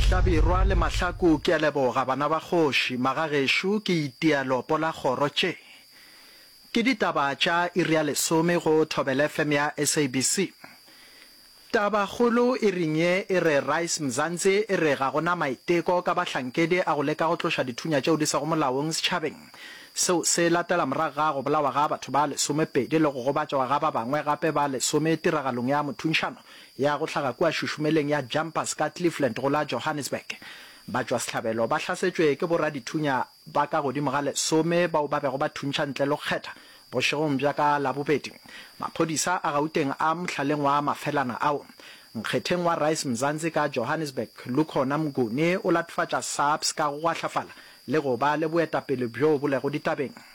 Hlabirwa le Mahlaku ke a leboga bana ba kgoši, magagešo ke itia lopo la kgoro tše ke ditaba tša iri ya lesome go Thobela FM ya SABC. Taba kgolo e ring ye e re Rise Mzansi e re ga go na maiteko ka bahlankedi a go leka go tloša dithunya tšeo di sego molaong setšhabeng seo se latela morago ga go bolawa ga batho ba lesomepedi le go gobatšwa ga ba bangwe gape ba lesome tiragalong ya mothuntšhano ya go hlaga kua šušumeleng ya Jumpers ka Cleveland go la Johannesburg. Batšwasehlabelo ba hlasetšwe ke boradithunya ba ka godimo ga lesome bao ba bego ba thuntšha ntle le go kgetha bošegong bja ka Labobedi. Maphodisa a Gauteng a mohlaleng wa mafelana ao. Nkgetheng wa Rise Mzansi ka Johannesburg, Lukhona Mnguni o latofatša SAPS ka go gwahlafala le go ba le boetapele bjoo bo lego ditabeng.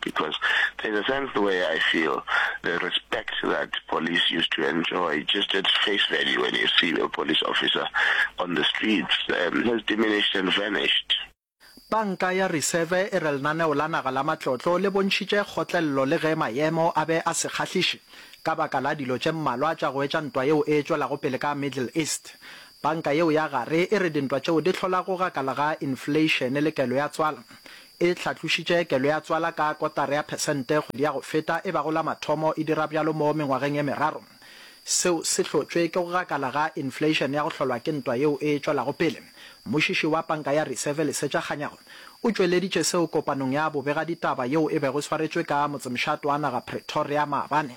because there's a sense the way I feel the respect that police used to enjoy just at face value when you see a police officer on the streets um, has diminished and vanished. Banka ya Reserve e re lenaneo la naga la matlotlo le bontšhitše kgotlelelo le ge maemo a be a se kgahliše ka baka la dilo tše mmalwa tša go etša ntwa yeo e tšwelago pele ka Middle East. Banka yeo ya gare e re dintwa tšeo di hlola go gakalaga infleišene le kelo ya tswala E hlatlošitše kelo ya tswala ka kotara ya phesente kgwedi ya go feta, e bago la mathomo e dira bjalo mo mengwageng ye meraro. Seo se hlotšwe ke go gakala ga infleišene ya go hlolwa ke ntwa yeo e tšwelago pele. Mmušiši wa panka ya Reserve Lesetša Kganyago o tšweleditše seo kopanong ya bobegaditaba yeo e bego e swaretšwe ka motsemšato wa naga Pretoria maabane.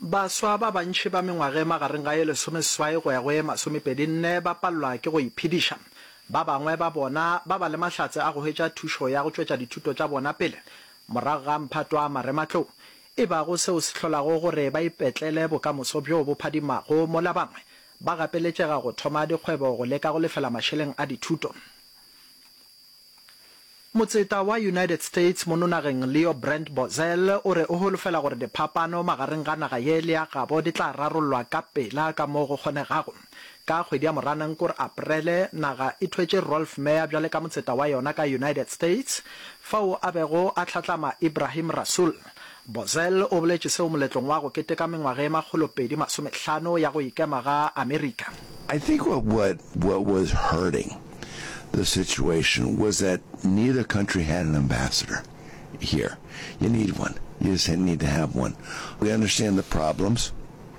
Baswa ba bantši ba mengwaga e magareng ga e lesomeseswai go ya go e masomepedinne ba palelwa ke go iphediša. Ba bangwe ba bona ba ba le mahlatse a go hwetša thušo ya go tšwetša dithuto tša bona pele morago ga mphato wa marematlou, e bago seo se hlolago gore ba ipetlele bokamoso bjo bo phadimago, mola bangwe ba gapeletšega go thoma dikgwebo go leka go lefela mašeleng a dithuto. Motseta wa United States mo nonageng Leo Brandt Bozell o re o holofela gore diphapano magareng ga naga ye le ya gabo di tla rarollwa ka pela ka moo go kgonegago. Ka kgwedi ya Moranang kore Aprele, naga e thwetše Rolf Meyer bjale ka motseta wa yona ka United States, fao a bego a hlatlama Ibrahim Rasool, Bozell o boletše seo moletlong wa go keteka mengwaga ye makgolopedi masomehlano ya go ikema ga Amerika. I think what what what was hurting the situation was that neither country had an ambassador here. You need one. You just need to have one. We understand the problems.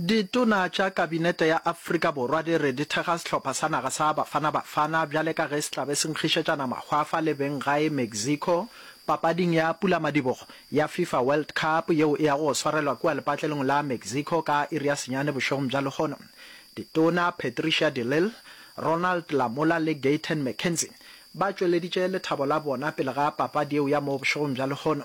Ditona tša Kabinete ya Afrika Borwa di re di thekga sehlopha sa naga sa Bafana Bafana bjale ka ge se tla be se nkgišetšana mahwafa le beng gae Mexico papading ya pulamadibogo ya FIFA World Cup yeo e yago go swarelwa kua lepatlelong la Mexico ka iri ya senyane bošegong bja lehono. Ditona Patricia de Lille, Ronald Lamola le Gayton McKenzie ba tšweleditše lethabo la bona pele ga papadi yeo ya mo bošegong bja lehono.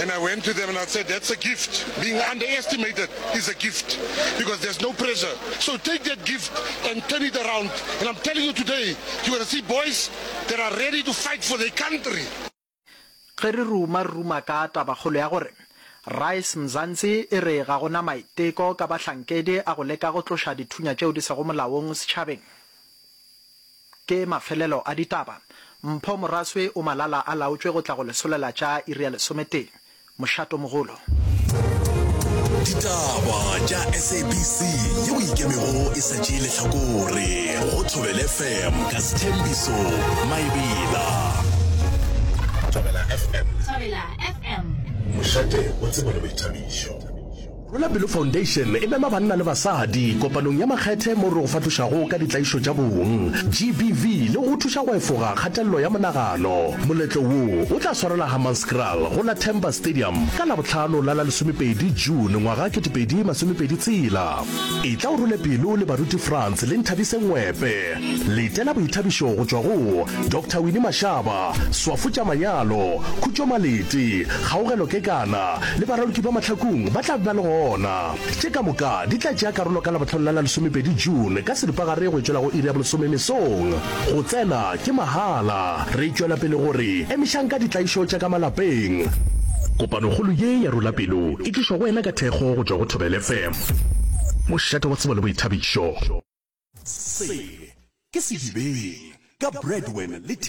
And I went to them and I said, that's a gift. Being underestimated is a gift because there's no pressure. So take that gift and turn it around. And I'm telling you today, you're going to see boys that are ready to fight for their country. Ge re ruma, re ruma ka tabakgolo ya gore Rise Mzansi e re ga go na maiteko ka bahlankedi a go leka go tloša dithunya tšeo di sego molaong setšhabeng. Ke mafelelo a ditaba. Mpho Moraswe o malala a laotšwe go tla go lesolela tša iri ya lesometee. Mošato mogolo. Ditaba tša SABC ye o ikemego e sa tšee lehlakore go Thobela FM ka Sthembiso Maebela. Thobela FM. Thobela FM. Mošate o tsebo le boithabišo. Rwela Pelo Foundation e mema banna le basadi kopanong ya makgethe moo re go fahlošago ka ditlaišo tša bong, GBV, le go go thuša go efoga kgatelelo ya monagano. Moletlo wo o tla swarela Hammanskraal go la Temba Stadium ka Labohlano la la lesomepedi June ngwaga kete pedi masomepedi tshela. Etla o rwele pelo le baruti Frans le Nthabise Ngwepe. Letela boithabišo go tšwa go Doctor Winnie Mashaba, Swafo Tša Manyalo, Khutšo Malete, Kgaugelo Kekana, le baraloki ba mahlakong ba tla ba le gona. Tše ka moka di tla tšea karolo ka Labohlano la la lesomepedi June ka seripagare go e tšwela go iri ya bolesome mesong. Go tsena ke mahala. Re tšwela pele go re emišang ka ditlaišo tša ka malapeng. Kopanokgolo ye ya Rula Pelo e tlišwa go wena ka thekgo go tšwa go Thobela FM. Mošate wa tsebo le boithabišo. Se ke sedibeng ka Bradwin le.